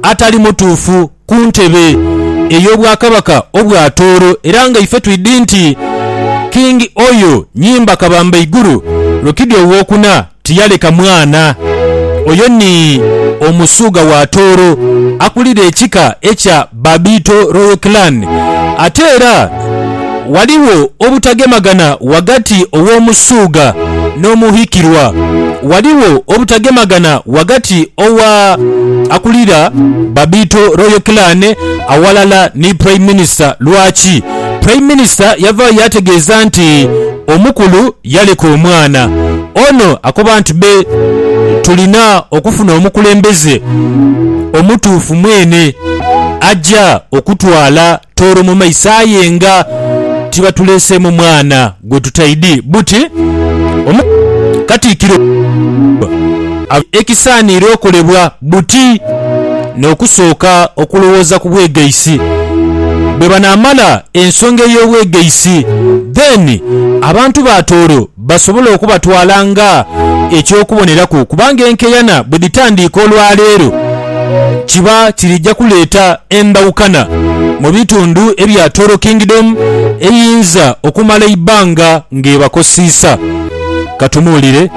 atali mutuufu ku ntebe ey'obwakabaka obwa Tooro era nga ife twidhi nti King Oyo Nyimba Kabamba Iguru Rokidi Owokuna tiyaleka mwana. Oyo ni Omusuuga wa Tooro akulira ekika ekya Babiito Royal Clan ate era. Ghaligho obutagemagana ghagati ow'omusuugha n'omuhikirwa. Ghaligho obutagemagana ghagati owa akulira Babito Royal Clan aghalala ni Prime Minister. Lwaki? Prime Minister yavaayo yaategeeza nti omukulu yaleka omwana. Ono akoba nti be tulina okufuna omukulembeze omutuufu mwene aja okutwala Tooro mu maiso aye nga tibatuleeseemu mwana gwe tutaidi buti omu Katikkiro abe ekisaaniire okolebwa buti n'okusooka okulowooza ku bwegaisi bwebanaamala ensonga ey'obwegaisi then abantu ba Tooro basobole okubatwala nga eky'okuboneraku kubanga enkeyana bwe dhitandiika olwa leero kiba kirija kuleeta endhawukana mu bitundu ebya Toro Kingdom eyinza okumala eibbanga ng'ebakosiisa. Katumuwulire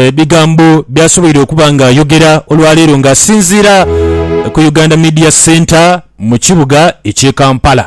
ebigambo by'asoboire okuba ng'ayogera olwa leero ng'asinziira ku Uganda Media Centre mu kibuga eky'e Kampala.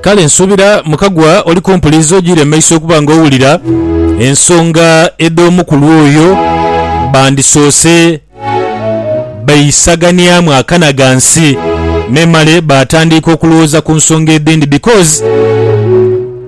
Kale nsuubira Mukagwa oli kumpuliza ojiire mu maiso okuba nga owulira ensonga edh'omukulu oyo. Bandisoose baisaganiamu akana ghansi memale baatandiika okulowooza ku nsonga edhindi because.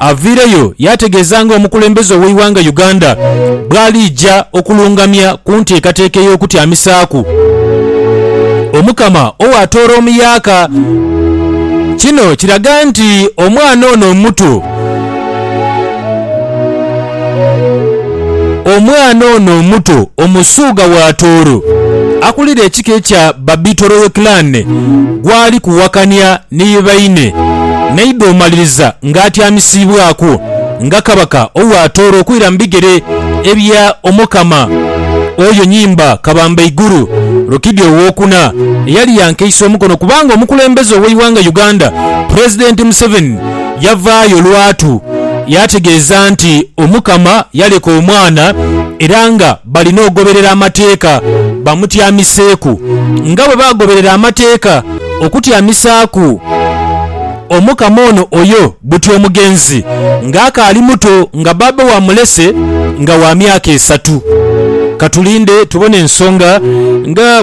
avaireyo yaategeeza nga omukulembeze ow'eighanga Uganda bw'aliija okulungamya ku nteekateeka ey'okutyamisaaku Omukama ow'atoora omuyaaka. Kino kiraga nti omwana ono omuto Omwana ono omuto Omusuugha wa Tooro akulira ekika ekya Babito Royal Clan gwali kuwakania. ni baine, naidha omaliriza ng'atyamisiibwaku nga kabaka owaatoolwa okwira mu bigere ebya Omukama. Oyo nyimba kabamba iguru. Rukidi Ow'okuna eyali yankeisa omukono kubanga omukulembeze ow'eighanga Uganda, Pulezidenti Museveni yavaayo lwatu yaategeeza nti Omukama yaleka omwana era nga, Balina ogoberera amateeka bamutyamiseeku, nga bwe baagoberera amateeka okutyamisaaku omukama ono oyo buti omugenzi ng'akaali muto, nga baabawe amulese nga wa myaka esatu. Ka tulinde tubone ensonga nga